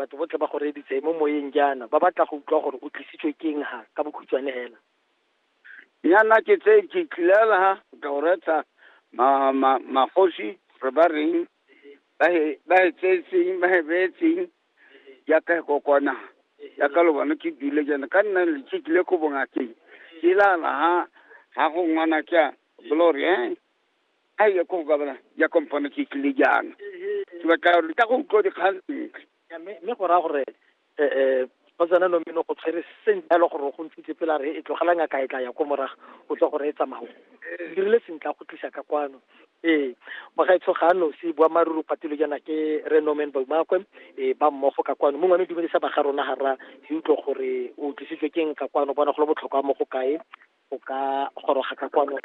Batho botlhe ba go reeditse mo moyeng jaana, ba batla go utlwa gore o tlisitswe ke eng ha, ka bokhutshwane hela. Nyana ke tse ke tlilela ha ka o retsa ma ma magosi re ba reng ba he ba he tsetseng ba he betseng ya ka go kona ya ka lo bona ke dule jana ka nna le ke tlile go bonga ke ke la la ha ha go ngwana ka glory eh a ye ko ka bona ya kompone ke tlile jaana ke batla gore ka go utlwa dikgang sentle mme go raya gore um go tsena nomeno go tshwere sentle jalo gore go ntshitse pela re e tlogela ngaka e tla ya ko morago o tle gore e tsamao dirile sentle a go tlisa ka kwano ee mogaetsho ga a nosi boammaaruri patelo jaana ke re nomen baumakwe e ba mmogo ka kwano mongwe ne dumedisa ba ga rona ga ra ke utlwe gore o tlisitswe keng ka kwano bona go le botlhokwa mo go kae o ka goroga ka kwano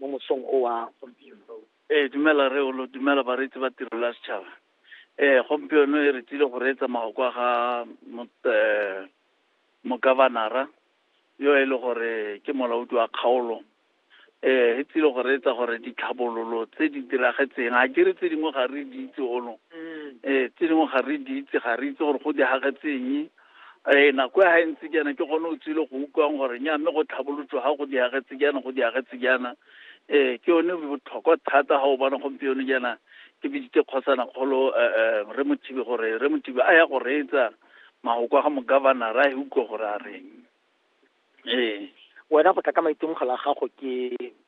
mo mosong o wa gompieno. Ee, dumela Rre Olo, dumela bareetsi ba Tirelo ya Setšhaba. Ee, gompieno e re tsile go reetsa magoko a ga eh, mokavanara yo e le gore ke molaodi wa kgaolo eh e tsile go reetsa gore ditlhabololo tse di diragetseng a ke re tse dingwe ga re di itse ono um mm. eh, tse dingwe ga re di itse ga re itse gore go diragetseng ee nako ya ga e ntse jaana ke gone o tsile go utlwang gore nya mme go tlhabolotswa ga go diagetse jaana go diagetse jaana ee ke yone botlhokwa thata ga o bona gompieno jaana ke biditse kgosana kgolo eh, eh, re mothibe gore re mothibe a ya go reetsa mahoko a ga mogavanara a e utlwe gore a reng ee wena go tla ka maitemogelo a gago ke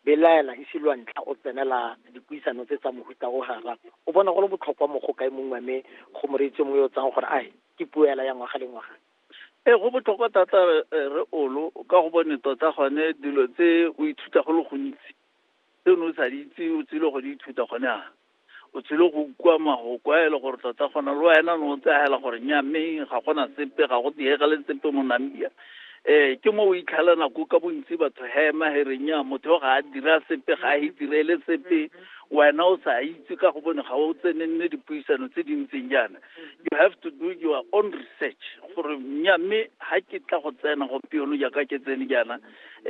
belaela ise lwa ntlha o tsenela dipuisano tse tsa mohuta o gara o bona go le botlhokwa mo go kae mongwe mme go moreetsi mongwe yo o tsang gore ae ke puo ela ya ngwaga le ngwaga ee go botlhokwa thata re olo ka go bone tota gone dilo tse o ithuta go le gontsi tse o ne o sa di itse o tsile go di ithuta gone a o tsile go ukwa mahoko a e le gore tota gona le wena no o tsagela gore nya mme ga gona sepe ga go diega le sepe mo namibia um ke mo o itlhela nako ka bontsi batho hema he re nya motho ga a dira sepe ga a itirele sepe wena o sa itse ka go bone ga o tsenenne dipuisano tse di ntseng jaana you have to do your own research gore nya mme ga ke tla go tsena gompieno jaaka ke tsene jaana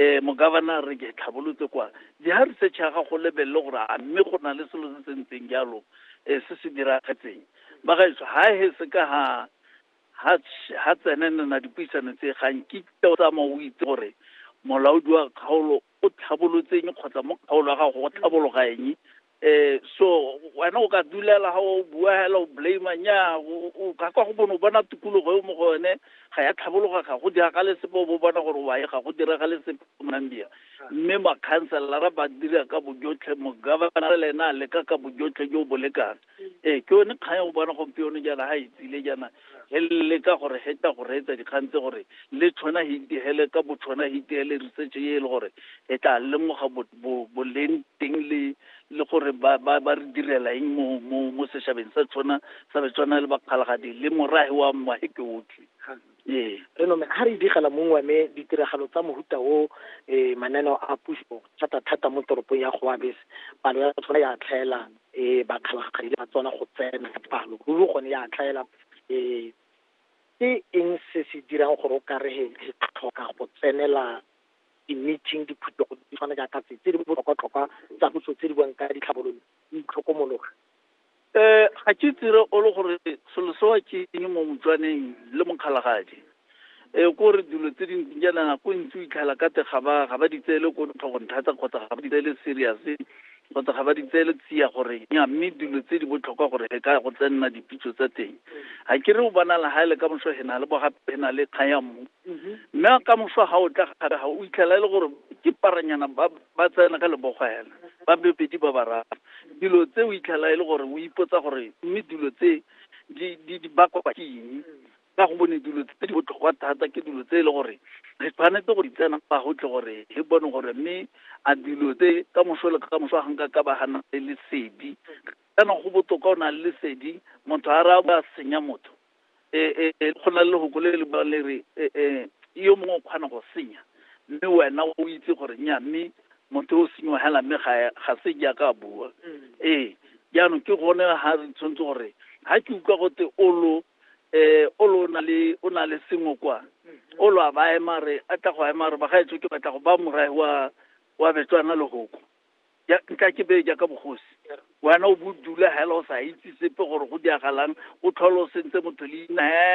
um mogabana re ke tlhabolotse kwa Dira research ya gago o lebelele gore a mme go na le selo se se ntseng jalo eh, se se diragetseng ba gaetsho ha he se ka ha ha tsh- ha tsenenena dipuisano tse ga nkitla o tsamaya o itse gore molaodi wa kgaolo o tlhabolotseng kgotsa mo kgaolo ya gago go tlhabologa eng eh so wena o ka dulela ga o bua hela o blame nya o ka kwa go bone o bona tikologo e mo go yone ga ya tlhabologa ga go dira ka le sepe o bo bona gore wa e ga go dira ga le sepe mambia mme ma councilor ba dira ka bojotlhe mo governor le ena le ka ka bojotlhe jo bo lekana eh ke yone kgang o bona gompieno jana ha itsile jana he leka gore he tla go reetsa dikgang tse gore le tshwana he itehele ka botshwana he itehele research e le gore e tla lemoga boleng teng le le gore ba ba ba re direla eng mo mo mo seshabeng sa tshwana sa betswana le bakgalagadi le morage wa mma he ke otlhe ee re nome ha re digela mongwe me ditiragalo tsa mohuta o eh mananeo a puso thata thata mo toropong ya Goabes palo ya tsona ya tlhaelana e ba kgalagakgadile ba tswana go tsena ka palo ruri gone ya tlhaela um ke eng se se dirang gore o ka re re tlhoka go tsenela di-meeting diphuthego di tshwana jaaka tse tse di botlhokwa-tlhokwa tsa puso tse di buang ka ditlhabololo di itlhokomologa um ga ke tsire o le gore selo sewa ke eng mo motswaneng le mokgalagadi e eh, ko re dilo tse dintsi jaana nako ntsi o itlhala ka te ga ba ga ba di tseele ko tlhogong thata kgotsa ga ba di tseele serious kgotsa ga ba di tseele tsia gore ya mme dilo tse di botlhokwa gore re ka go tsenna dipitso tsa teng ga ke re o bona la ga ele ka moso he na le bogape he na le kgaya mmu mhm. mme ka moso ga o tla gape ga o itlhala e le gore ke paranyana ba ba tsena ka lebogo hela ba bebedi ba bararo dilo tse o itlhala e le gore o ipotsa gore mme dilo tse di di bakwa ke eng ka go bone dilo tse di botlhokwa thata ke dilo tse e le gore re tshwanetse go di tsena fa go tle gore re bone gore mme a dilo tse ka moso le ka moso a ganka ka ba gana le lesedi kana go botoka o na le lesedi motho a ra ba senya motho e go na le lehoko le le ba le re yo mongwe o kgona go senya mme wena o itse gore nya mme motho o senyiwa hela mme ga se jaaka a bua ee jaanong ke gone ga re tshwanetse gore ga ke utlwa gote o lo eh o lo na le o na le sengwe kwa o lo a ba ema re a tla go a ema re ba ga etso ke batla go ba morae wa wa betswana lehoko ya nka ke be jaaka bogosi wena o bo dula hela o sa itse sepe gore go diagalang o tlhole o sentse motho leina he